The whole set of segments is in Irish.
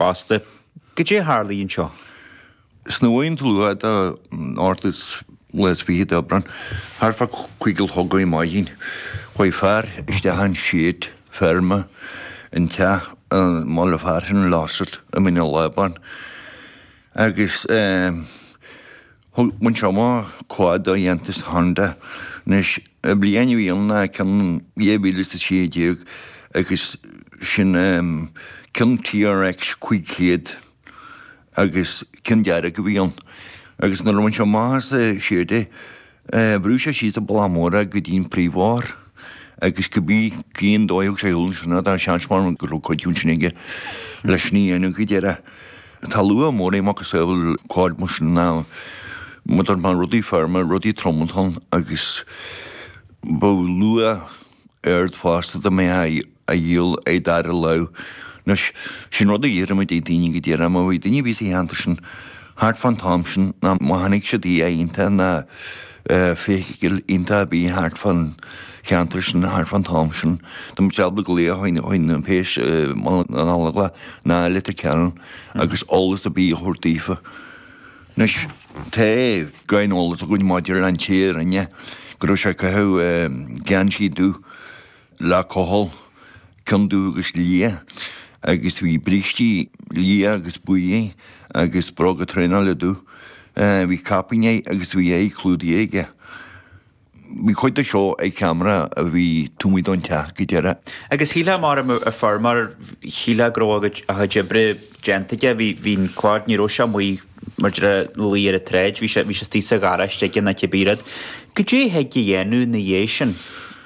Fosta, goidé a tharla anseo? Snuaíonn dlúth de áirt lá is fiche d'Aibreán, thart fá cúig a chlog ar maidin, chuaigh fear isteach i seid feirme i dteach i mbaile fearainn Losset i Mín an Lábáin agus. Bhain sé amach quad de dhéantús Honda anois bliain i ndiaidh na ceann in 2016 agus sin ceann TRX 500 agus ceann dearg a bhí ann agus nuair a bhain sé amach as an seid é bhrú sé síos an bealach mór é go dtí an príomhbhóthar agus cibé cén dóigh a thug sé ar shiúl ansin é tá seans mór ann go raibh cuidiú ansin aige leis sin a dhéanamh go díreach. Tá luach mór ar macasamhail quad mar sin ná mar a dúirt mé rudaí feirme, rudaí trom-antoin agus bheadh luach ard fosta dá mbeifeá á dhíol é dara lámh. Anois, sin rud a d'iarrfadh muid ar dhaoine go díreach, má bhí duine ar bith sa cheantar sin thart fán t-am sin ná má chonaic siad duine iontach ná feithicil iontach a bhí thart fán cheantar sin thart fán t-am sin. Dá mbeadh siad ábalta glaoch ar na péas i mBaile na nGallóglach ná i Leitir Ceanainn agus eolas ar bith a thabhairt daofa. Anois, tá gráinnín eolais againn maidir le an té a rinne é, go raibh sé ag caitheamh geansaí dubh, le cochall, ceann dubh agus liath, agus bhí brístí liatha agus buí agus bróga traenála dubh. Bhí caipín air agus bhí a aghaidh clúdaithe aige. Bhí cuid de seo ar ceamara a bhí taobh amuigh den teach go díreach. Agus shílfeá mar a fuair mar shílfeá go raibh a chuid oibre déanta aige. Bhí, bhí'n quad, ní raibh sé amuigh mar a déarfá ina luí ar a' tsráid, bhí sé, bhí sé istigh sa gharáiste aige ná cibé rud. Goidé thig a dhéanamh 'na dhiaidh sin?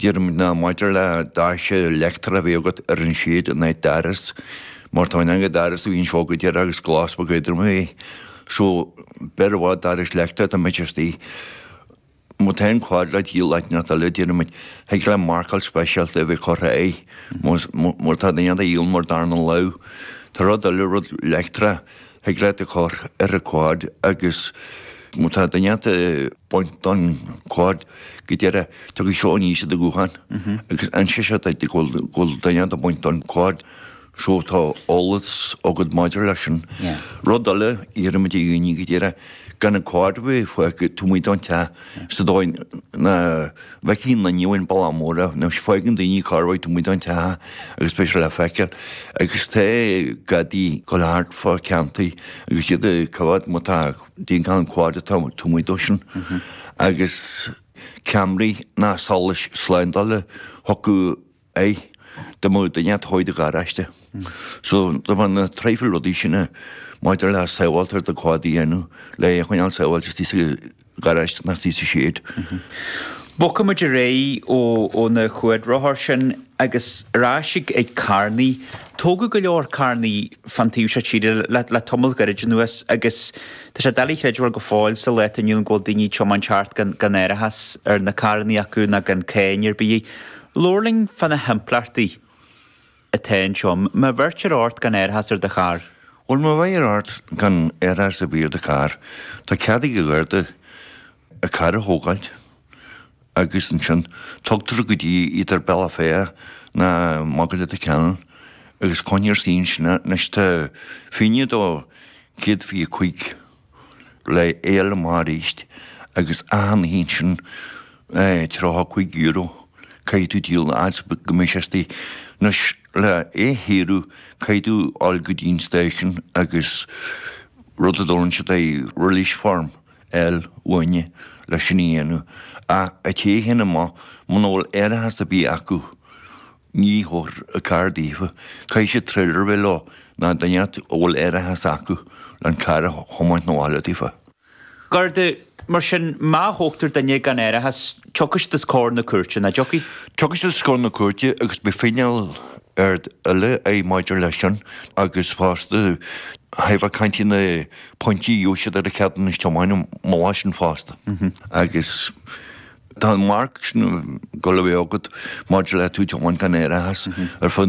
Déarfadh muid ná maidir le doras leictreach a bheith agat ar an seid in áit doras, mar tá an gnáthdhoras a bhíonns seo go díreach agus glas bheadh éadrom air. So, b'fhearr i bhfad doras leictreach dá mbeadh sé istigh. Má tá an quad le díol áit inteacht eile, déarfadh muid, thig leat marcáil speisialta a bheith curtha air, má tá duine inteacht á dhíol mar darna lámh. Tá rud eile, rud leictreach, Thig leat a chur ar an quad agus má tá duine inteacht ag baint don quad go díreach, tiocfaidh seo aníos ar do ghuthán agus inseoidh seo duit go bhfuil duine inteacht ag baint don quad, so tá eolas agat maidir leis sin. Rud eile, iarraimid ar dhaoine go díreach, gan an quad a bheith fágtha taobh amuigh den teach, sa dóigh nach. Mhicín na nDiabhail Balla Móra, nó faigheann daoine carbhat de mhuintir an teach agus beidh sé le feiceáil agus tá gadaí ag dul thart fá ceanntuí agus iad ag coimheád má tá díon cam comhaid atá amuigh dóibhsean agus ceamaraí ná solais slándála chucu. aidh, dá mba duine a toghadh do gharáiste. So, dá mba na traidhfil rudaí sin maidir le sábháilt ar do quad a dhéanamh, le é a choinneáil sábháilte istigh sa gharáiste ná istigh sa shed. Bogfaidh muid ar aghaidh ó na cuadrothair sin agus ar ais ag carrannaí. Tógadh go leor carrannaí fán taobh seo tíre le tamall gairid anuas agus tá sé doiligh a chreidbheáil go fóill sa lá atá inniu ann go bhfuil daoine ag tiomáint thart gan árachas ar na carrannaí acu ná gan cáin ar bith. Labhair linn fá na himpleachtaí atá anseo. Má bheirtear ort gan árachas ar do charr. Bhuel, má bheirtear ort gan árachas a bheith ar do charr, tá cead ag an Gharda do charr a thógáil agus ansin tugtar go dtí either Bealach Féich ná amach go Leitir Ceanainn agus coinnítear istigh ansin. Anois, tá fine de 125. le é a fháil amach arís agus achan oíche ansin tríocha cúig euro caithfidh tú díol an fhad is go mbeidh sé istigh. Anois le é a shaoradh caithfidh tú dul go dtí an station agus rud a dtabhrann siad air release form a fháil uainne le sin a dhéanamh. Ach an té sin amuigh muna bhfuil árachas ar bith acu Ní thabharfar an carr daofa caithfidh siad tréiléar a bheith leo ná duine inteacht a bhfuil árachas acu le an carr a thiomáint chun an bhaile daofa. Garda, Mar sin, má thógtar duine gan árachas, tiocfaidh siad os comhair na cúirte, nach dtiocfaidh? Tiocfaidh siad os comhair na cúirte agus beidh fíneáil eile ann maidir leis sin agus fosta tá tú ag caint ar na pointí a gheobhadh siad ar a gceadúnas tiomána maidir leis sin fosta agus Tá an mharc sin go leibhéal agat maidir le tú teann gan éire a theas ar fud